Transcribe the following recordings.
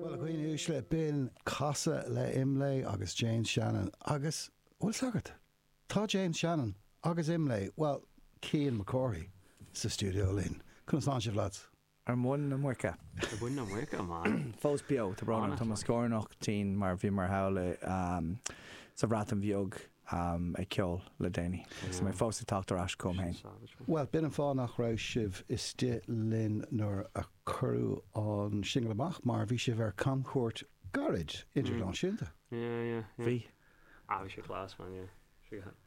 Bhuel, a dhaoine uaisle, b'in casadh le Imlé agus James Shannon agus, bhuel, sagart. Tá James Shannon agus Imlé, bhuel, Cian Mac Cárthaigh, sa stiúideo linn. Conas tánn sibh, lads? Ar mhuin na muice. Ar mhuin na muice, a mhac. Fós beo, tá brón orm, tá mo scórnach tinn mar bhíomar thall sa Bhreatain Bheag. em, ag ceol le déanaí. Agus mé fós ag teacht ar ais chugam féin. Bhuel, b'in an fáth nach raibh sibh istigh linn nuair a cuireadh an singil amach, mar bhí sibh ar camchuairt gairid, idirnáisiúnta. Bhí. Ah, bhí sé class, man, yeah.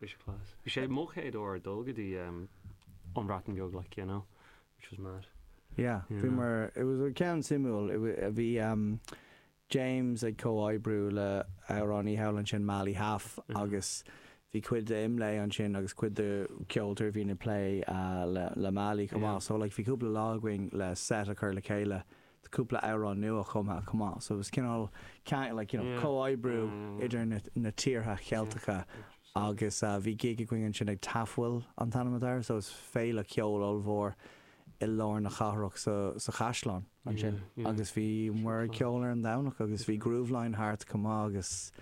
Bhí sé class. Bhí sé mo chéad uair ag dul go dtí an Bhreatain Bheag, like, you know, which was mad. Yeah, bhíomar, it was, ceann suimiúil, bhí, James ag comhoibriú le amhránaí thall ansin Mali Hâf agus bhí cuid de Imlé ansin agus cuid de ceoltóirí a bhíonn ag plé le Mali chomh maith so like bhí cúpla lá againn le set a chur le chéile do cúpla amhrán nua chumtha chomh maith so it was cineál ceangal like you know comhoibriú idir na na tíortha Cheilteacha agus bhí gig againn ansin ag Tafwyl an t-ainm atá air so is féile ceoil ollmhór i lár na cathrach sa sa chaisleán. ansin agus bhíomar ag ceol ar an Domhnach agus bhí Grooveline thart chomh maith agus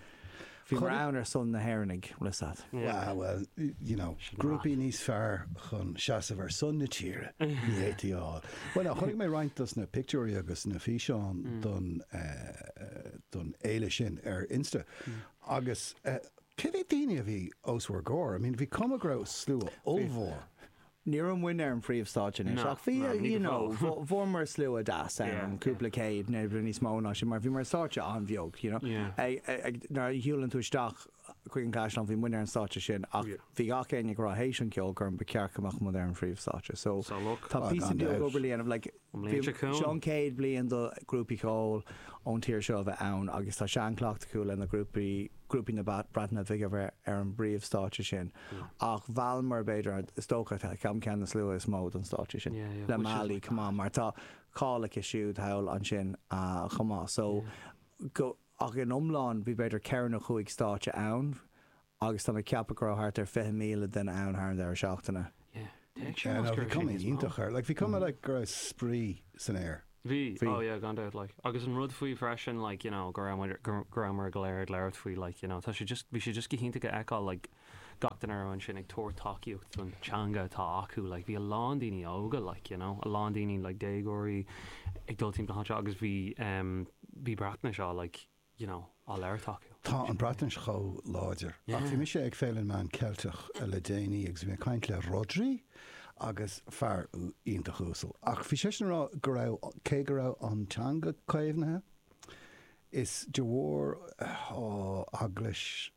bhíomar ann ar son na hÉireannaigh, Rissat. Wow, well, you know, grúpaí níos fearr chun seasamh ar son na tíre ní fhéadfaí a fháil. Bhuel, chonaic mé roinnt dos na pictiúirí agus na físeáin don, eh, don fhéile sin ar Insta agus, eh, cé mhéad daoine a bhí os bhur gcomhair? I mean, bhí cuma go raibh slua ollmhór. Ní raibh muinn ar an phríomhstáitse anois ach bhí, you know, fuaireamar slua deas ann, cúpla céad nó níos mó ná sin mar bhí muid ar stáitse an-bheag, you know. Nuair a shiúlann tú isteach chuig an gCaisleán, bhí muinn ar an stáitse sin ach bhí gach éinne ag rá théis an cheolchoirm ba cheart go mbeadh muid ar an phríomhstáitse. So tá píosa beag obair le dhéanamh, like, An bhliain seo chugainn. Bhí, seo an chéad bhliain do ghrúpaí ceoil ón tír seo a bheith ann agus tá seanchleacht acu le na grúpaí, grúpaí na Breataine Bige a bheith ar an bpríomh stáitse sin ach mheallamar b'fhéidir, is dócha ceann, ceann de na slua is mó don stáitse sin Yeah, yeah, which is mad, like. Le Mali chomh maith, mar tá cáil aici siúd thall ansin chomh maith so Yeah. ach in iomlán bhí b'fhéidir ceithre nó cúig stáitse ann, Agus tá mé ag ceapadh go raibh thart ar 20,000 duine ann thar an deireadh seachtaine. Yeah, deir sé, más, deir sé níos mó. Yeah, no, bhí cuma iontach air. Like, bhí cuma like go raibh spraoi san aer. Bhí, Bhí. oh yeah, gan dabht like. Agus an rud faoi freisin like, you know, go raibh muid, go raibh muid go léir ag labhairt faoi like, you know, tá sé just, bhí sé just go hiontach a fheiceáil like gach duine a raibh ansin ag tabhairt tacaíocht don teanga atá acu like. Bhí a lán daoine óga like, you know, a lán daoine like déagóirí ag dul timpeall anseo agus bhí, em, bhí Breatnais á like, you know, á labhairt acu. Tá an Bhreatnais chomh láidir. Ach bhí mise ag Féile na Meán Ceilteach le déanaí agus bhí mé ag caint le Rhodri agus fear iontach uasal ach bhí seisean a rá go raibh, cé go raibh an teanga caomhnaithe, is de bharr, ó, eaglais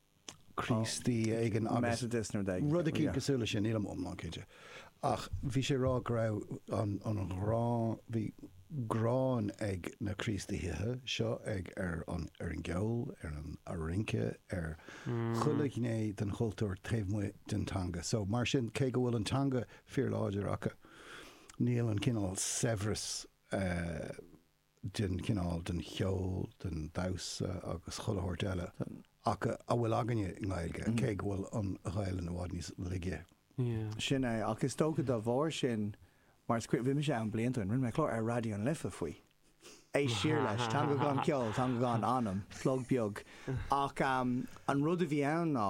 Críostaí éigin nó rud eicínt cosúil leis sin, nílim iomlán cinnte. Ach bhí sé ag rá go raibh an ghráin, bhí gráin ag na Críostaithe seo ar an gceol, ar an rince, ar chuile ghné den chultúr taobh amuigh den teanga. So mar sin, cé go bhfuil an teanga fíorláidir acu, níl an cineál saibhreas, eh, den chineál, den cheol, den damhsa agus chuile shórt eile a bhfuil againne i nGaeilge, cé go bhfuil an Ghaelainn i bhfad níos laige. Yeah. Sin é, ach is dócha dá bharr sin, mar is cuimhin, bhí mise ann blianta ó shin, rinne mé clár ar Raidió na Life faoi. Éist siar leis, Teanga gan Cheol, Teanga gan Anam, plug beag. Ach an rud a bhí ann ná,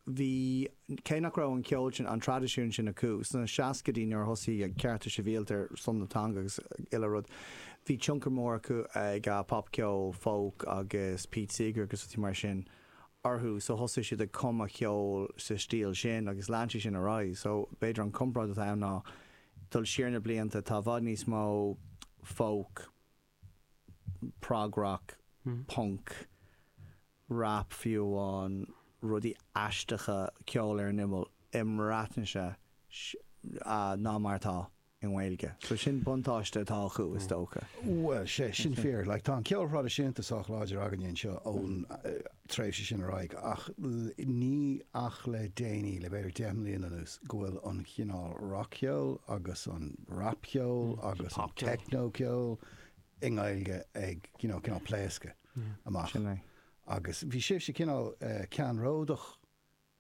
bhí, cé nach raibh an ceol sin, an traidisiún sin acu sna seascaidí nuair a thosaigh cearta sibhialta ar son na teanga agus chuile rud, bhí tionchar mór acu ag popcheol, folk agus Pete Seeger agus rudaí mar sin orthu so thosaigh siad ag cumadh ceol sa stíl sin agus lean sé sin ar aghaidh so b'fhéidir an comparáid atá ann ná dul siar na blianta tá i bhfad níos mó folk prog-rock, punk, rap fiú amháin, rudaí aisteacha, ceol ar an imeall, i mBreatnais ná mar atá i nGaeilge. So sin buntáiste atá acu, is dócha. Bhuel, tá sé sin fíor. Like, tá an ceol thraidisiúnta sách láidir againne anseo ón. tréimhse sin ar aghaidh ach níl ach le déanaí, le b'fhéidir deich mbliana anuas, go bhfuil an chineál rac-cheol agus an rapcheol agus an teicneocheol i nGaeilge ag you know cineál pléascadh amach agus bhí sibhse cineál ceannródach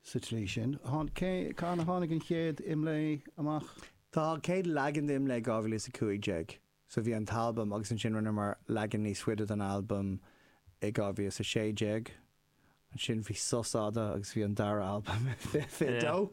sa tslí sin. Cathain a tháinig an chéad Imlé amach? Tháinig an chéad leagan de Imlé 2015. So bhí an t-albam agus ansin rinneamar leagan níos faide den albam i 2016. Ansin bhí sos fhada agus bhí an dara albam i 2022.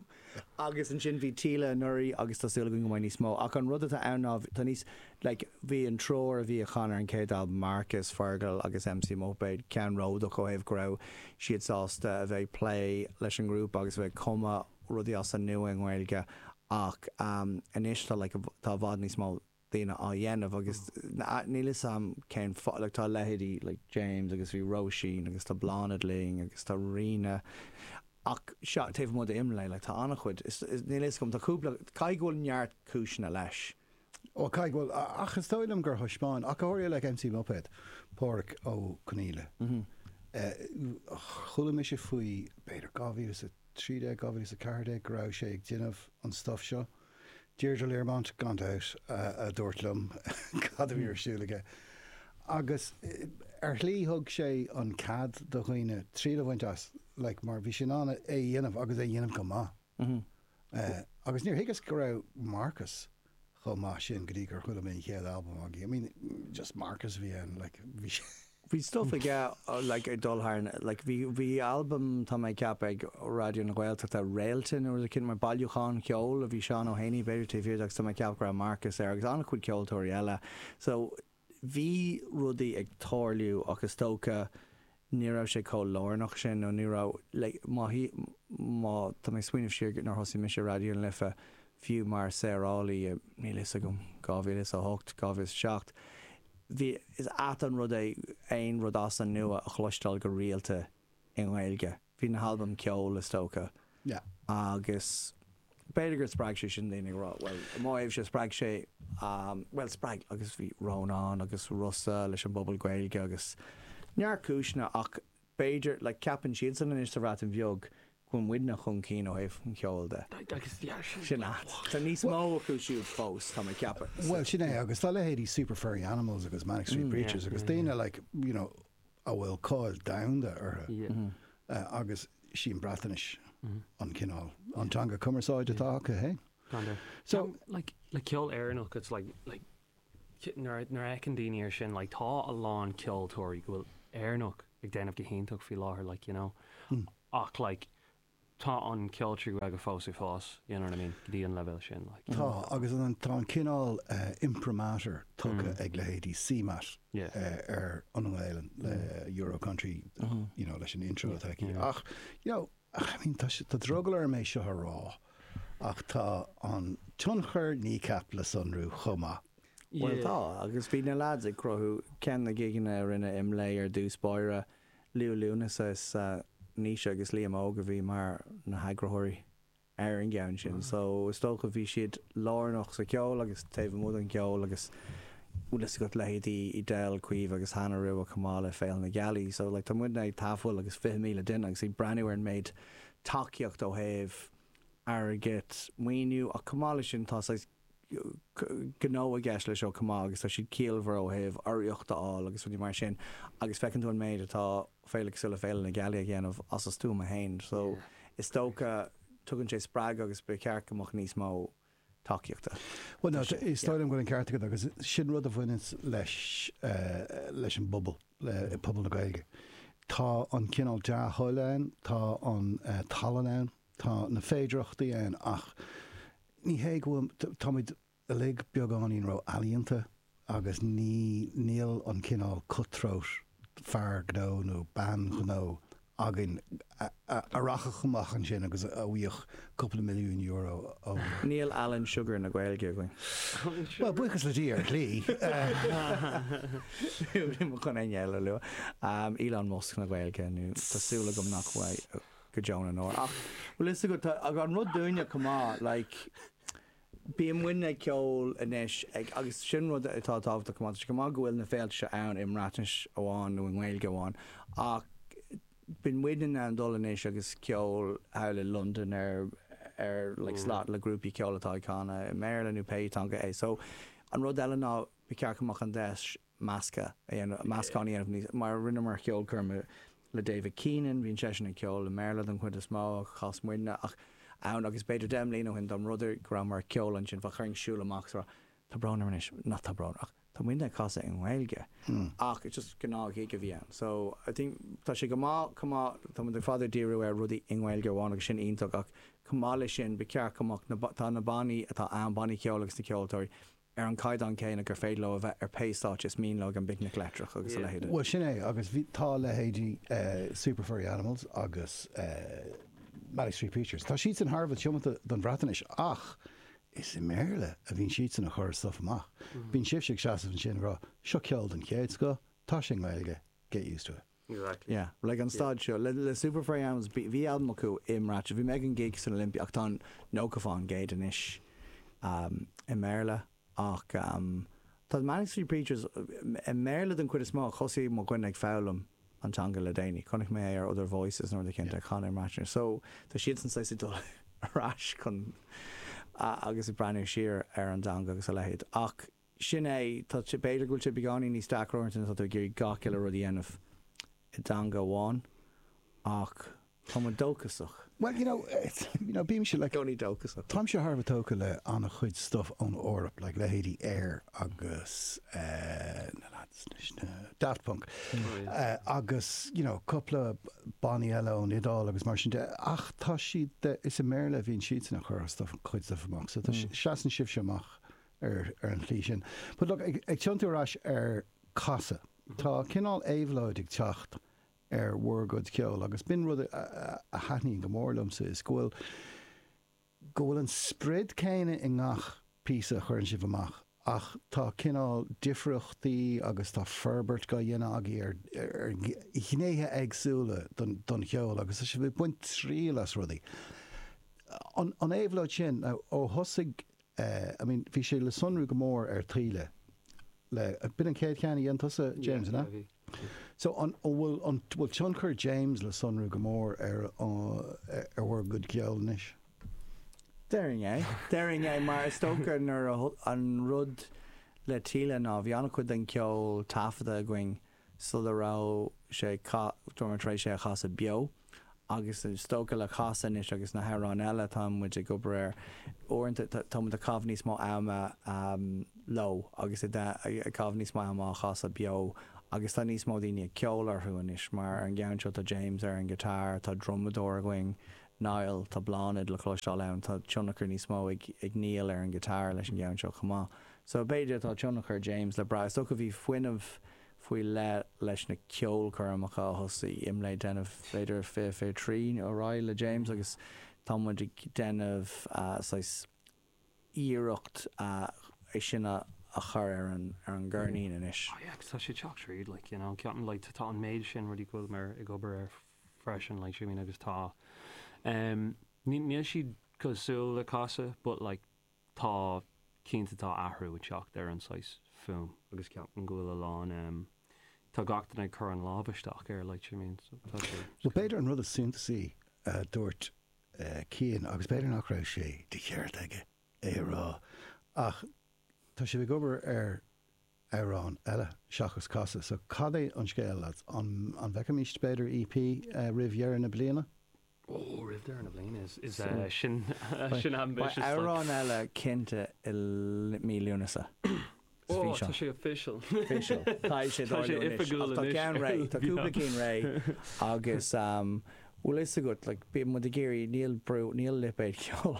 Agus ansin bhí Tíle anuraidh agus tá súil againn go mbeidh níos mó. Ach an rud atá ann ná tá níos, like, bhí an triúr a bhí a chan ar an chéad albam, Marcus, Fergal agus MC Muipéad, ceannródach ó thaobh go raibh siad sásta a bheith ag plé leis an rap agus a bheith ag cumadh rudaí as an nua i nGaeilge ach anois tá, like, tá i bhfad níos mó. daoine á dhéanamh agus níl 'fhios a'm cén fáth, like tá leithéidí like James agus bhí Róisín agus tá Blánaid linn agus tá Ríona ach seo, taobh amuigh de Imlé like tá an-chuid, is níl 'fhios a'm, tá cúpla, caithfidh go bhfuil neart cúiseanna leis. Ó caithfidh go bhfuil, ach is dóigh liom gur thaispeáin ach go háirithe like MC Muipéad, Páraic Ó Conghaile, chuala mise faoi b'fhéidir 2013, 2014 go raibh sé ag déanamh an stuff seo. Deirdre Learmont gan dabht a dúirt liom cad a bhí ar siúl aige. Agus ar shlí thug sé an cead do dhaoine triail a bhaint as like mar bhí sé in ann é a dhéanamh agus é a dhéanamh go maith. Agus níor thuigeas go raibh Marcus chomh maith sin go dtí gur chuala mé an chéad albam againn. I mean just Marcus a bhí ann like bhí sé. Bhí stuff aige like ag dul thar na like bhí bhí albam tá mé ag ceapadh ag Raidió na Gaeltachta Réalta nó rud eicínt mar bailiúchán ceoil a bhí Seán Ó hÉanaigh b'fhéidir taobh thiar de agus tá mé ag ceapadh go raibh Marcus air agus an-chuid ceoltóirí eile so bhí rudaí ag tarlú ach is dócha ní raibh sé chomh lárnach sin nó ní raibh like má má tá mé ag smaoineamh siar nuair a thosaigh mise Raidió na Life fiú mar saorálaí i, níl a fhios agam, 2008, 2007, bhí, is ait an rud é aon rud as an nua a chloisteáil go rialta i nGaeilge. Bhí na halbaim Ceol, is dócha. Yeah. Agus b'fhéidir gur spreag sé sin daoine ag rá, bhuel, i mo thaobhse, spreag sé, bhuel, spreag, agus bhí Rónán agus Rossa leis an bPuball Gaeilge agus neart cúiseanna ach B'fhéidir, like, ceapann siadsan anois sa Bhreatain Bheag go bhfuil muidne chun cinn ó thaobh an cheoil de. Sin é. Tá níos mó acu siúd fós, tá mé ag ceapadh. Bhuel, sin é, agus tá leithéidí Super Furry Animals agus Manic Street Preachers agus daoine, like, you know, a bhfuil cáil domhanda orthu agus sí an Bhreatnais an cineál, an teanga cumarsáide atá acu fhéin. So, like, le ceol Éireannach, it's like, like, nuair a fheiceann daoine air sin like tá a lán ceoltóirí go bhfuil Éireannach ag déanamh go hiontach faoi láthair like you know ach like tá an ceol trí Ghaeilge fós ag fás you know what I mean go dtí an leibhéal sin like tá agus an tá an cineál imprimatur tugtha ag leithéidí CMAT ar an nGaeilinn le Euro Country you know leis an intro atá aici ach you know I mean tá sé tá drogall orm é seo a rá Ach tá an tionchar Kneecap le sonrú chomh maith. Bhuel tá, agus bhí na leaids ag cruthú. Ceann na gigeanna a rinne Imlé ar dtús báire, Liú Lúnasa is Naoise agus Liam Óg a bhí mar na heagraitheoirí ar an gceann sin. So is dócha bhí siad lárnach sa cheol agus taobh amuigh den cheol agus bhfuil fhios agat leithéidí Edel, Caoimhe agus Hannah Rua chomh maith le Féile na Gealaí. So like tá muidne ag gabháil agus fiche míle duine agus ag breathnú ar an méid tacaíocht ó thaobh airgid, maoiniú ach chomh maith leis sin tá saghas gnó i gceist leis seo chomh maith agus tá siad ciallmhar ó thaobh urraíocht a fháil agus rudaí mar sin agus feiceann tú an méid atá féile cosúil le Féile na Gealaí a dhéanamh as a stuama fhéin so is dócha tugann sé spreagadh agus ba cheart go mbeadh níos mó tacaíochta. Bhuel ná, is dóigh liom go bhfuil an ceart agat agus sin rud a bhaineann leis an bpobal, le pobal na Gaeilge. Tá an cineál dea-thoil ann, tá an tallann ann, tá na féidearthachtaí ann ach ní hé go bhfuil, táimid uilig beagáinín ró-ealaíonta agus ní, níl an cineál cut-throat fear gnó nó bean ghnó againn a rachadh amach ansin agus a bhfaigheadh cúpla milliún euro ó. Níl Alan Sugar na Gaeilge againn. Bhuel, buíochas le Dia, ar shlí. Nílim chun éinne eile a lua. Elon Musk na Gaeilge nó tá súil agam nach mbeidh go deo na ndeor. Ach bhfuil fhios agat, tá an rud dúinne chomh maith, like, Bíonn muidne ag ceol anois ag agus sin rud atá tábhachtach chomh maith. Tá sé go maith go bhfuil na féilte seo ann i mBreatnais amháin nó i nGaeilge amháin ach bíonn muidne in ann dul anois agus ceol thall i Londain ar ar like slot le grúpaí ceoil atá ag canadh i mBéarla nó pé teanga é. So an rud eile ná ba cheart go mbeadh an deis measctha a dhéanamh, meascán a dhéanamh níos, mar rinneamar ceolchoirm le David Keenan, bhíonn seisean ag ceol i mBéarla den chuid is mó, chas muidne ach ann agus b'fhéidir deich mbliana ó shin dá mb'fhéidir go rabhamar ag ceol ansin go mbeadh daoine ag siúl amach so tá brón orm anois, nach tá brón ach tá muidne ag casadh i nGaeilge ach it's just gnáth-ghig a bhí ann so I think tá sé go maith chomh maith tá muid ar fad ag díriú ar rudaí i nGaeilge amháin agus sin iontach ach chomh maith leis sin ba cheart go mbeadh na tá na bannaí atá ann, bannaí ceoil agus na ceoltóirí, ar an gcaighdeán céanna gur féidir leo a bheith ar pé stáitse is mian leo ag an bPicnic Leictreach agus a leithéide. Bhuel sin é agus bhí, tá leithéidí Super Furry Animals agus Manic Street Preachers, tá siadsan thar a bheith tiomanta don Bhreatnais ach is i mBéarla a bhíonn siadsan ag cur stuif amach. Bíonn sibhse ag seasamh ansin ag rá 'seo ceol den chéad scoth, tá sé i nGaeilge, get used to it'. Exactly. Yeah, like ag an staid seo, le Super Furry Animals, bhí albam acu i mBreatnais, bhí mé ag an gig san Olympia ach tá nócha fán gcéad anois i mBéarla ach tá Manic Street Preachers i mBéarla den chuid is mó, thosaigh mo dhuine ag foghlaim an teanga le déanaí, chonaic mé é ar Other Voices nó rud éicint ag canadh i mBreatnais so tá siadsan saghas ag dul ar ais chun agus ag breathnú siar ar an dteanga agus a leithéid ach Sin é. Tá, b'fhéidir go bhfuil sé beagáinín níos deacra uaireanta nuair atá tú ag iarraidh gach uile rud a dhéanamh i dteanga amháin ach tá muid dóchasach. Bhuel, you know, bímse, like, i gcónaí dóchasach. Táimse thar a bheith tógtha le an-chuid stuff ón Eoraip, like, leithéidí Air agus eh na lads anois, na, Daft Punk agus, you know, cúpla bannaí eile ón Iodáil agus mar sin de ach tá siad, is i mBéarla a bhíonn siadsan a' chur a' stuff, a gcuid stuff amach so tá, seasann sibhse amach ar an tslí sin. But look, ag tiontú ar ais ar Casadh, tá cineál éabhlóid ag teacht ar bhur gcuid ceoil agus b'in rud a thaitníonn go mór liomsa is go bhfuil, go bhfuil an sprid céanna i ngach píosa a chuireann sibh amach ach tá cineál difríochtaí agus tá forbairt dá dhéanamh agaibh ar, ar ghnéithe éagsúla don, don cheol agus tá sibh ag baint triail as rudaí. An, an éabhlóid sin, ó thosaigh Eh, I mean, bhí sé le sonrú go mór ar Taoille le, b'in an chéad cheann a dhein tusa, James, an ea? Yeah, bhí, bhí. So, an bhfuil, an bhfuil tionchar James le sonrú go mór ar, ar bhur gcuid ceoil anois? Déarfainn é. Déarfainn é mar is dócha nuair a, an rud le Taoille ná bhí an-chuid den cheol taifeadta againn sula raibh sé ag casadh, raibh muid tar éis é a chasadh beo, agus is dócha le Casadh anois agus na hamhráin eile atá muid ag obair air, uaireanta tá muid ag caitheamh níos mó ama leo agus ag caitheamh níos mó ama á chasadh beo agus tá níos mó daoine ag ceol orthu anois mar ar an gceann seo tá James ar an guitar, tá drumadóir againn, Niall, tá Bláthnaid le cloisteáil ann, tá tionchar níos mó ag Niall ar an guitar leis an gceann seo chomh maith. So b'fhéidir tá tionchar James le brath. Is dócha bhí fuinneamh faoi leith leis na ceolchoirmeacha a thosaigh IMLÉ ag déanamh b'fhéidir fiche fiche trí ar aghaidh le James agus tá muid ag déanamh saghas iarracht é sin a chur ar an ar an gceirnín anois. Oh yeah agus tá sé ag teacht tríd like you know ceapaim like tá an méid sin rudaí go bhfuil mé ag obair air freisin like see what I mean agus tá em níl siad cosúil le Casadh but like tá cinnte tá athrú ag teacht ar an saghas fuaim. agus ceapaim go bhfuil a lán em tá gach duine ag cur a lámh isteach air like you mean so tá sé Bhuel, b'fhéidir an rud is suntasaí a dúirt eh Cian agus b'fhéidir nach raibh sé de cheart aige é a rá ach tá sibh ag obair ar amhrán eile seachas Casadh so cad é an scéal lads? An an bhfeicfimist b'fhéidir EP eh roimh dheireadh na bliana? Beidh amhrán eile cinnte i mí Lúnasa. Tá sé official. Tá sé oifigiúil anois. Tá ceann réidh. Tá cúpla cinn réidh agus bhfuil fhios agat, like, bíonn muid ag iarraidh, níl brú, níl lipéad ceoil.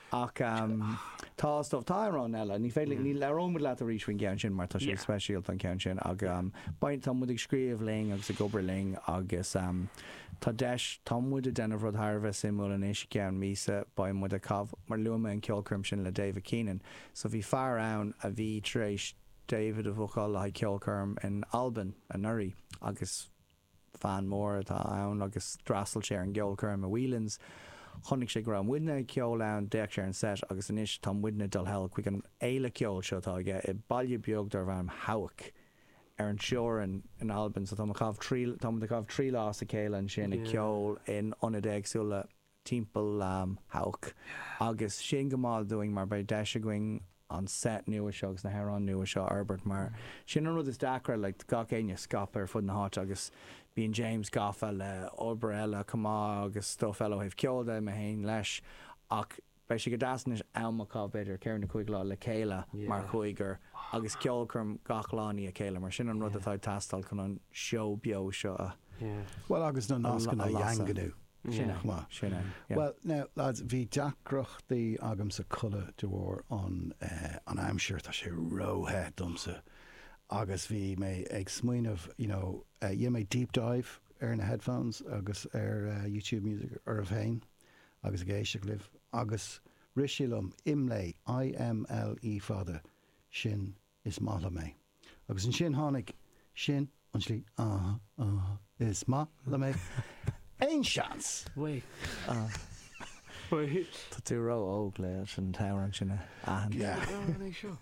Ach tá stuff, tá amhráin eile, ní féidir, ní, labhróimid leat arís faoin gceann sin mar tá sé speisialta an ceann sin ach beidh, tá muid ag scríobh linn agus ag obair linn agus tá deis, tá muid ag déanamh rud thar a bheith suimiúil anois, i gceann míosa beidh muid ag caith, mar luaigh mé an ceolchoirm sin le David Keenan, so bhí fear ann a bhí tar éis David a bhookáil le haghaidh ceolchoirm in Albain anuraidh agus. Fan mór atá ann agus d'fhreastail sé ar an gceolchoirm i Whelan's. Chonaic sé go raibh muidne ag ceol ann, d'fhéach sé ar an set agus anois tá muidne dul thall chuig an fhéile ceoil seo atá aige i baile beag darb ainm Hawick ar an teorainn in Albain. So táimid ag caitheamh trí lá as a chéile ansin ag ceol in ionaid éagsúla timpeall Hawick agus sin go maith dúinn mar beidh deis againn an set nua seo agus na hamhráin nua seo a fhorbairt mar sin an rud is deacra like gach éinne scaipthe ar fud na háite agus bíonn James gafa le obair eile chomh maith agus stuff eile ó thaobh ceoil de, mé féin leis ach beidh sé go deas anois am a chaitheamh b'fhéidir ceithre nó cúig lá le chéile mar chúigear agus ceolchoirm gach lá i ndiaidh a chéile mar sin an rud atá ag teastáil chun an seó beo seo a bhuel agus na nascanna a dhaingniú. Sin é. Sin é. Bhuel, now, lads, bhí deacrachtaí agamsa codladh de bharr an aimsir, tá sé ró-the domsa agus bhí mé ag smaoineamh, you know, dhéan mé deep dive ar na headphones agus ar YouTube Music oraibh féin agus ag éisteacht libh agus rith sé liom, Imlé, I-M-L-E fada, sin is maith liom é. Agus ansin tháinig, sin an slí, ah, ah, is maith liom é. Aon seans? Tá tú ró óg le an t-amhrán sin a aithint.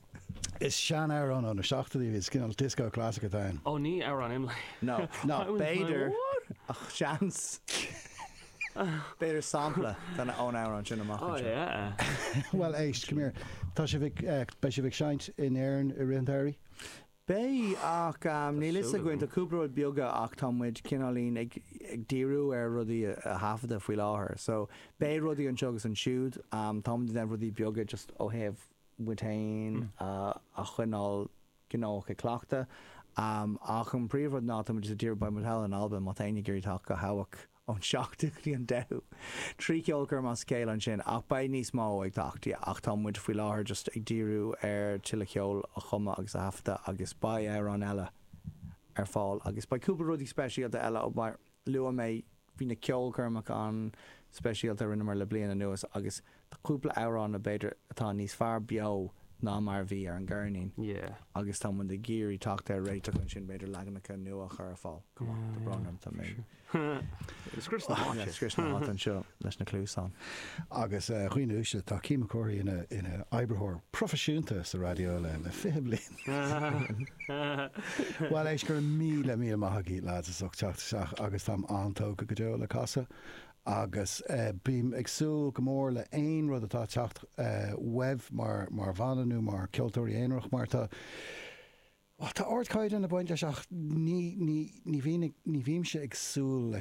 Is seanamhrán ó na seachtóidí é, is cineál disco classic atá ann. Ó ní amhrán Imlé. No, no, b'fhéidir ach seans. B'fhéidir sampla déanta ón amhrán sin amach anseo. Bhuel éist, come here, tá sibh ag, beidh sibh ag seinnt in Éirinn i rith an tsamhraidh? Beidh, ach níl a fhios againn, tá cúpla rud beaga ach tá muid cineáilín ag díriú ar rudaí a thaifeadadh faoi láthair. So beidh rudaí anseo agus ansiúd, tá muid ag déanamh rudaí beaga just ó thaobh muid féin a choinneáil gnóthach ag cleachtadh. Ach an príomhrud ná tá muid ag díriú, beidh muid thall in Albain má tá éinne ag iarraidh teacht go Hawick ón 7ú go dtí an 10ú. Trí cheolchoirm as a chéile ansin ach beidh níos mó ag teacht ach tá muid faoi láthair just ag díriú ar tuilleadh ceoil a chumadh agus a thaifeadadh agus beidh amhráin eile ar fáil agus beidh cúpla rudaí speisialta eile mar luaigh mé Bhí na ceolchoirmeacha an-speisialta a rinneamar le bliain anuas agus tá cúpla amhrán a b'fhéidir atá níos fearr beo ná mar a bhí ar an gceirnín agus tá muid ag iarraidh teacht ar réiteach ansin b'fhéidir leaganacha nua a chur ar fáil. Tá brón orm, tá mé ag scrios na háite. Ag scrios na háite anseo leis na cluasáin. Agus dhaoine uaisle, tá Cian Mac Cárthaigh ina oibritheoir proifisiúnta sa raidió le 20 bliain. Bhuel éist, go raibh míle, míle maith agaibh lads as ucht teacht isteach agus táim an-tógtha go deo le Casadh agus bím ag súil go mór le haon rud atá ag teacht uaibh mar bhanna nó mar ceoltóirí aonaracha mar tá, bhuel tá ardchaighdeán ag baint leis ach ní, ní, ní bhím, ní bhímse ag súil le